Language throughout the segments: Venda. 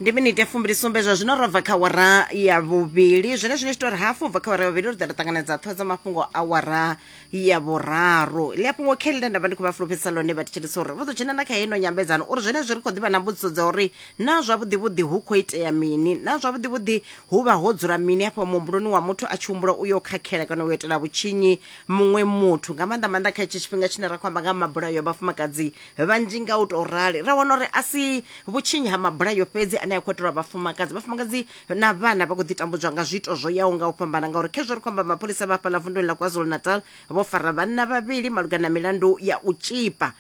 ndi minite fumbilisumbe zwa zwino robva kha wara ya vhuvhili zwine zwine tshitori hafu ubva kha wara ya vhuvhili ri ḓa ri ṱanganedza ṱhoho dza mafhungo a wara ya vhuraru ḽi a fhungo khe ḽine nda vha ndi khou vha fulufhedzisa ḽone vha thetshelisa uri ri ḓo dzhena na kha heino nyambedzano uri zwenezwi ri khou ḓivha na mbudziso dza uri na zwavhuḓivhuḓi hu khou itea mini na zwavhuḓivhuḓi hu vha ho dzula mini hafha muhumbuloni wa muthu a tshi humbula u yo khakhela kana u itela vhutshinyi muṅwe muthu nga maanḓa maanḓa kha hetshi tshifhinga tshine ra khou amba nga mabulayo vhafumakadzi vhanzhi nga u tou rali ra wana uri a si vhutshinyi ha mabulayo fhedzi ane a khou itelwa vhafumakadzi vhafumakadzi na vhana vha khou ḓi tambudzwa nga zwiito zwo yaho nga u fhambana ngauri khezwo ri khou amba mapholisa vha fhaḽa vunduni ḽa kwazulu-natal vho fara vhanna vhavhili malugana na milandu ya u tshipa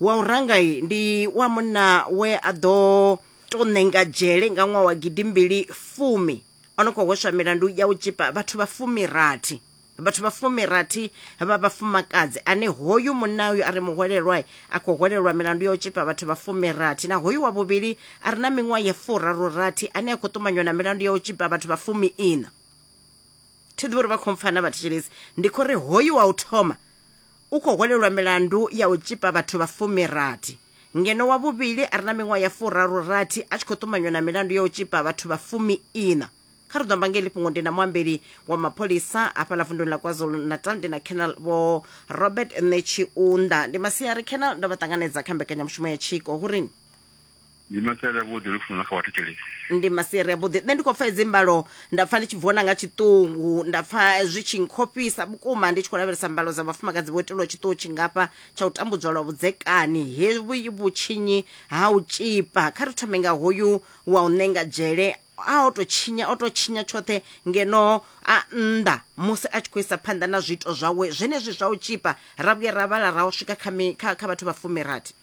wa u rangai ndi wa munna we a ḓo tou ṋenga dzhele nga ṅwaha wa gidimbili fumi o no khou hweswa milandu ya u tshipa vhathu vha fumirathi vhathu vha fumirathi vha vhafumakadzi ane hoyu munna uyu a re muhwelelwa a khou hwelelwa milandu ya u tshipa vhathu vha fumirathi na hoyu wa vhuvhili a re na miṅwaha ya furarurathi ane a khou ṱumanywa na milandu ya u tshipa vhathu vha fumiiṋa thi ḓivhi uri vha khou mpfana vhathetshelesi ndi khou ri hoyu wa u thoma u khou hwelelwa milandu ya u tshipa vhathu vha fumirathi ngeno wa vhuvhili a re na miṅwaha ya furarurathi a tshi khou ṱumanywa na milandu ya u tshipa vhathu vha fumiiṋa kha ri ḓo amba ngeli fhungo ndi na muambeli wa mapholisa hafhaḽa vunduni ḽa kwazulu natal ndi na canal vho robert netshiunda ndi masiari canal ndo vha ṱanganedza kha mbekanyamushumo ya tshiko hu rini ndi masiari avhuḓi ri funa kha vhathetshelesi ndi masiari avhuḓi nṋe ndi khou pfa hedzi mbalo nda pfa ndi tshi vhona nga tshiṱungu nda pfa zwi tshi nkhofhisa vhukuma ndi tshi khou lavhelesa mbalo dza vhafumakadzi vho itelwa tshiṱuhu tshingafha tsha u tambudzwa lwa vhudzekani he vhutshinyi ha u tshipa kha ri thome nga hoyu wa u ṋenga dzhele a o tou tshinya o tou tshinya tshoṱhe ngeno a nnḓa musi a tshi khou isa phanḓa na zwiito zwawe zwenezwi zwa u tshipa ra vhuya ra vhala ra u swika kha, kha, kha vhathu vha fumirathi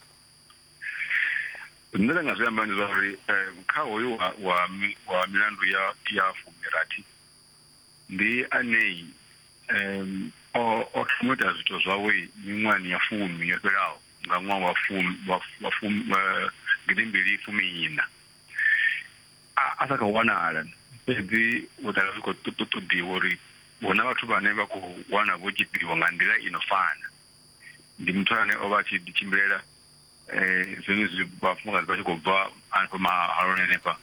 zwine nda nga zwi amba ndi zwa uri um kha hoyu wa wa wa milandu ya ya fumirathi ndi anei um o o thoma ita zwithu zwawe miṅwahani ya fumi yo fhelaho nga ṅwaha wa fumi wa fumi eh, gidimbili fumi ina a sa khou wanala fhedzi u ḓala zwi khou ṱoḓiwa uri hu na vhathu vhane vha khou wana vho tshipiwa nga nḓila i no fana ndi muthu ane o vha a tshi ḓi tshimbilela um zwenezwi vhafumakadzi vha tshi khou bva hanefha mahaloni hanefha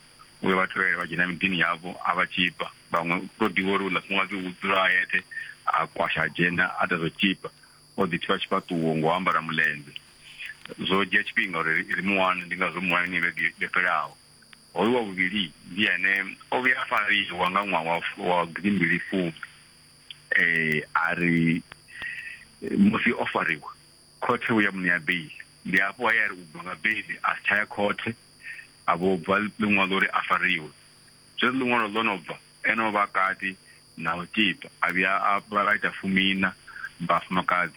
uyo vha tevhela vha dzhena miḓini yavho a vha tshipa vhaṅwe u tou ḓivha uri uḽa fumakadzi u dzula a yeṱhe a kwasha adzhenda a ḓa zwo tshipa O ḓi thivha tshifhaṱuwo ngo ambara muḽenze. Zwo dzhia tshifhinga uri ri mu wane, ndi ngazwo muwaini vhege yo fhelaho. Hoyu wa vhuvhili ndi ene o vhuya a fariwa nga ṅwaha wa wa gidimbili fumi. A ri musi o fariwa khothe vho ya mu ṋea beiḽi, ndi hafho he a ri u bva nga beiḽi a si tsha ya khothe, a vho bva ḽiṅwalo uri a fariwe. Zwezwi ḽiṅwalo ḽo no bva, Ene o vha kati na u tiba, a vhuya a ita fumiiṋa vhafumakadzi.